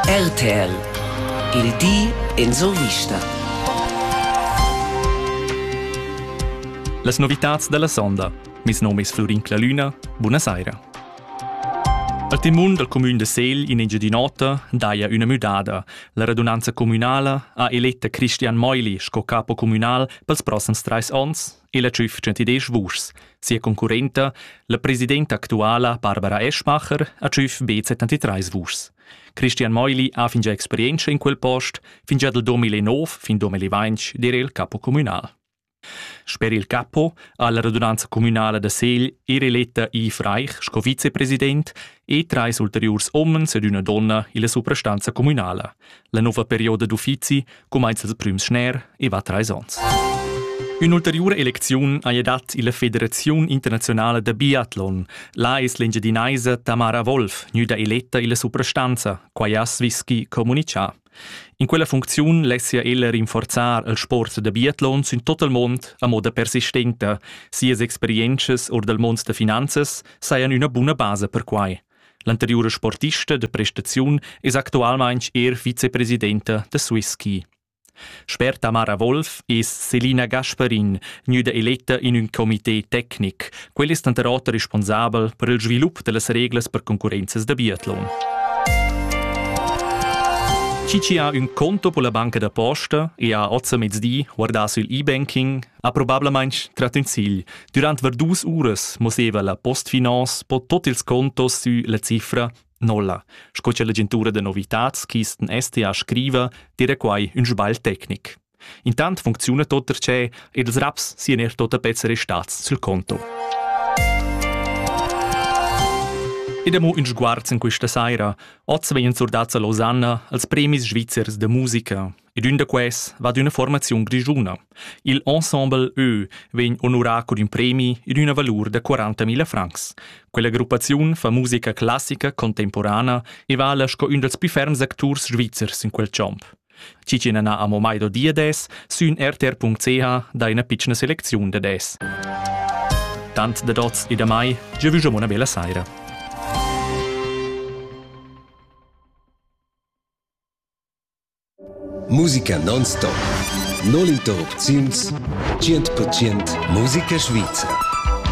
RTL Il di in survista. Las novitads dalla sonda. Mes nom es Florin Clalüna. Buna saira. Al timun dal cumün de Segl in Engiadin'Ota daja üna müdada. La radunanza communala ha eletta Christian Meuli sco capo communal pels prossams trais ons. ella tschüf 110 vuschs. Sia concurrenta, la presidenta actuala Barbara Eschmacher, ha tschüf be 73 vuschs. Christian Meuli ha fingià experientscha in quel post, fingià dal 2009 fin 2020 dir il capo communal. Sper il capo ha la radunanza communala da Segl er eletta Yves Reich sco vicepresident e treis ulteriurs omens ed üna donna illa suprastanza communala. La nova perioda d'uffizi cumainza il prüm schner e va trais ons. Ün'ulteriura elecziun haja dat illa Federaziun internazionala da biatlon. La es l'engiadinaisa Tamara Wolf gnüda eletta illa suprastanza, quai ha Svischi comunichà. In quella funcziun lessia ella rinforzar il sport da biatlon sün tot il mond a moda persistenta. Sias experientschas or dal mond da finanzas sajan üna buna basa per quai. L'anteriura sportista da prestaziun es actualmaing eir vicepresidenta da Swisski. Sper Tamara Wolf es Selina Gasparin gnüda eletta in ün comité tecnic. Quel es tanter oter responsabel per il svilup da las reglas per concurrenzas da biatlon. Chi chi ha ün conto pola banca da posta e ha ozza mezdi guardà sül e-banking Ha probablamain trat ün sigl. Durant var dus uras mosseva la Postfinance po tot ils contos sü la cifra nolla, sco cha l'agentura da novitats Kisten STA scriva, dire quai ün sbagl tecnic. Intant funcziuna tot perche ils raps sian er tot a pezzer restats sul conto. Ed amo ün sguarz in questa saira. Oz vegnan surdats a Losanna als premis svizzers da musica. Ed ün da quels va ad üna formaziun grischuna. Il ensemble Ö vegn onurà cun ün premi ed üna valur da 40.000 francs. Quella gruppaziun fa musica classica contemporana e vala sco ün dals più ferms acturs svizzers in quel champ. Cicina na amo mai do dia des, sün rtr.ch dai üna pitschna selecziun da des. Tant da dots e da mai, già vüsch una bella saira. Musica non-stop. No l'interrupziuns. 100% musica svizra.